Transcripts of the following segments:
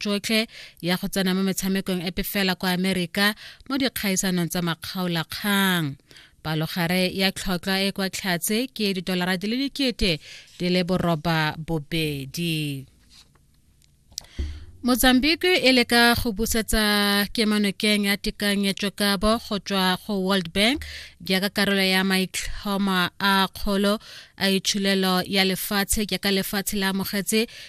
tsotlhe ya go tsena mo metshamekong epe fela kwa amerika mo dikgaisanong tsa makgaolakgang palogare ya tlhotlhwa e kwa tlhatse ke didolara di le dikete di le boroba bobedi mozambique e leka go busetsa kemanokeng ya tekanyetsokabo go tswa go world bank jaaka karolo ya maitlhoma a kgolo a itshulelo ya lefatshe jaaka lefatshe la amogetse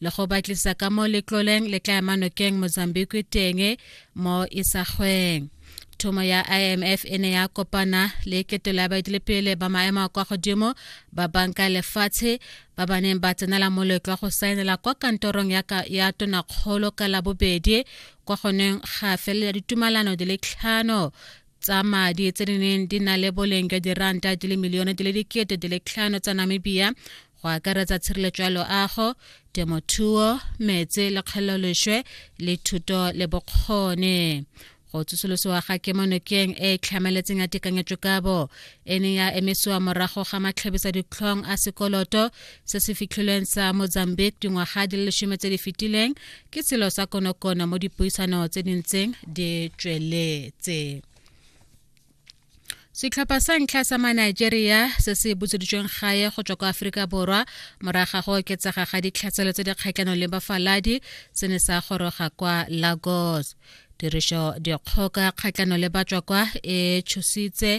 le go batlisa ka mo letloleng le tla ema nokeng mozambique teng mo isagweng thomo ya imf e ne ya kopana le ketelo ya baetelepele ba maemo a kwa godimo ba banka lefatshe ba ba neng ba tsenela moletlo wa go saenela kwa kantorong ya, ka, ya tonakgolo ka labobedi kwa goneng ga felela ditumalano di le tlhano tsa madi tse di neng di na le boleng jwa diranta di le milione di le dikete di le tlhano tsa namibia go akaretsa tshireletso ya loago temothuo metse le kgeleloleswe le thuto le bokgone go tsosolosiwa ga kemonokeng e e tlhamaletseng ya tekanyetsokabo e ne ya emesiwa morago ga matlhabisa ditlhong a sekoloto se se fitlhilweng sa mozambique dingwaga di le lesome tse di fetileng ke selo sa konokono mo dipuisano tse di ntseng di tsweletse setlhopha sa ntlha sa manigeria se se butseditsweng gae go tswa kwa aforika borwa moraga go oketsega ga ditlhaselo tse di kgatlhanong le bafaladi se ne sa goroga kwa lagos tirišo dikgoka kgatlano le batswa kwa e tshositse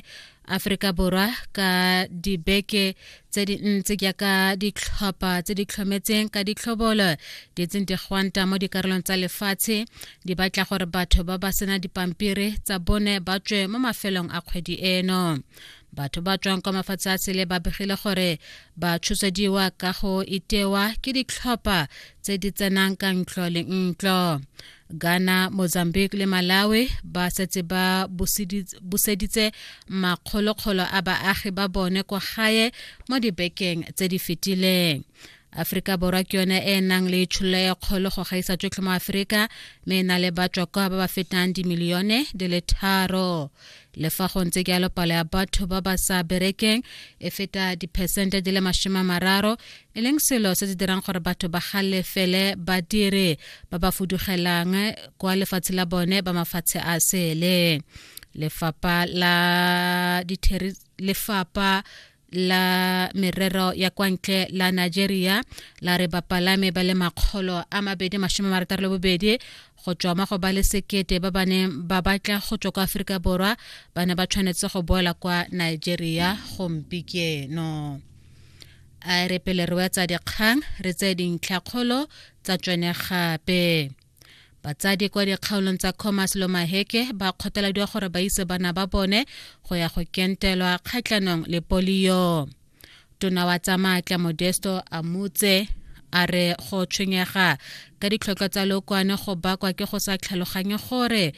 Afrika Borwa ka dibeke tse dintsi jaaka ditlhopha tse di tlhometseng ka ditlhobolo di tseng di gwanta mo dikarolong tsa lefatshe di batla gore batho ba ba sena dipampiri tsa bone ba tswe mo mafelong a kgwedi eno batho ba tswang kwa mafatshe a sele ba begile gore ba tshosediwa ka go itewa ke ditlhopha tse di tsenang ka ntlo le ntlo ghana mozambique le malawi ba setse ba buseditse makgolokgolo a baagi ba bone kwa gae mo dibekeng tse di fetileng aforika borwa ke yone e e nang le tsholo e kgolo go gaisa tsotlhe mo aforika mme e na le batswakwa ba ba fetang dimilione di le tharo le fa go ntse jalo palo ya batho ba ba sa berekeng e feta diphesente di le masome mararo e leng selo se se dirang gore batho ba galefele badiri ba ba fudugelang kwa lefatshe la bone ba mafatshe a sele lefapa la lefapa la merero ya kwa ntle la nigeria la re bapalame ba le makgolo a mabedi masome marataro le bobedi go tswa mo go ba le sekete ba ba neng ba batla go tswa kwa aforika borwa ba ne ba tshwanetse go boela kwa nigeria gompikeno a re pele re wetsa dikgang re tseye dintlhakgolo tsa tsone gape batsadi kwa dikgaolong tsa commerce lo maheke ba kgothaladiwa gore ba ise bana ba bone go ya go kentelwa kgatlhanong le polio tona wa tsa maatla modesto a motse a re go tshwenyega ka ditlhotlhwa tsa lookwane go bakwa ke go sa tlhaloganye gore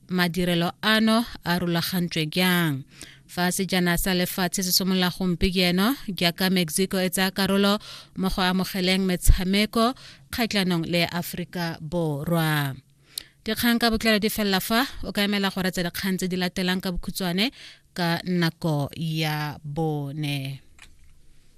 madirelo ano a rulagantswe jang fa sejana sa lefatshe se simolola gompieno jaaka mexico e tsaya karolo mo go amogeleng metshameko kgatlhanong le aforika borwa dikgang ka botlalo di felela fa o ka emela gore tse dikgang tse di latelang ka bokhutshwane ka nako ya bone